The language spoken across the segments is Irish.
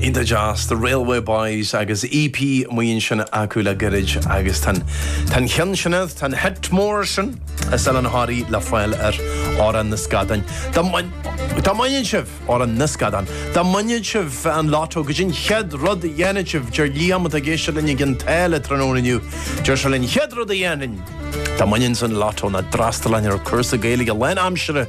Iontach deas, The Railway Boys agus EP amuigh ansin acu le gairid agus tá an cheann sin, tá an hit mór sin is ar an Harry le fáil air Amhrán na Scadán. Dá mbaineann sibh Amhrán na Scadán, dá mbaineann sibh an lotto, goidé an chéad rud a dhéanann sibh, deir Liam atá ag éisteacht linn i gCionn tSáile tráthnóna inniu, deir sé linn an chéad rud a dhéanfainn dá mbainfinnse an lotto ná d'fhreastalainn ar cúrsa Gaeilge lán aimsire,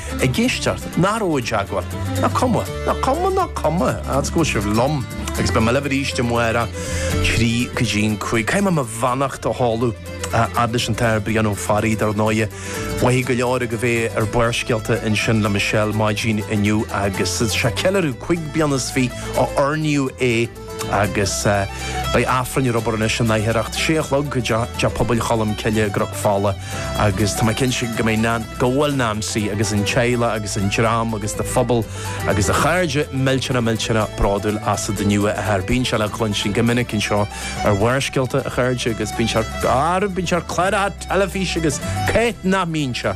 ag éisteacht, nó a raibh i dteagmháil, ná cuma, ná cuma, ná cuma, agus go bhfuil sibh liom, agus beidh mé libh arís amárach ón trí go dtí'n cúig. Caithfidh mé mo bheannacht a sheoladh a fhad leis an tAthair Brian Ó Fearraigh, dar ndóighe. Mhothaigh go leor agaibh é ar Barrscéalta ansin le Michelle maidin inniu agus é ag ceiliúradh cúig bliana is fiche ó oirníodh é, agus beidh Aifreann ar obair anois in aicearracht sé a chlog i dteach pobail Cholm Cille i gCnoc Fola agus tá mé cinnte go mbeidh Nan, go bhfuil Nancy agus an teaghlach agus an dream agus do phobal agus do chairde millteanach millteanach bródúil asat inniu a Athair. Bíonn sé le cluinstin go minic anseo ar Bharrscéalta a chairde agus bíonn sé ar, bíonn sé ar cláracha teilifíse agus cá háit nach mbíonn sé?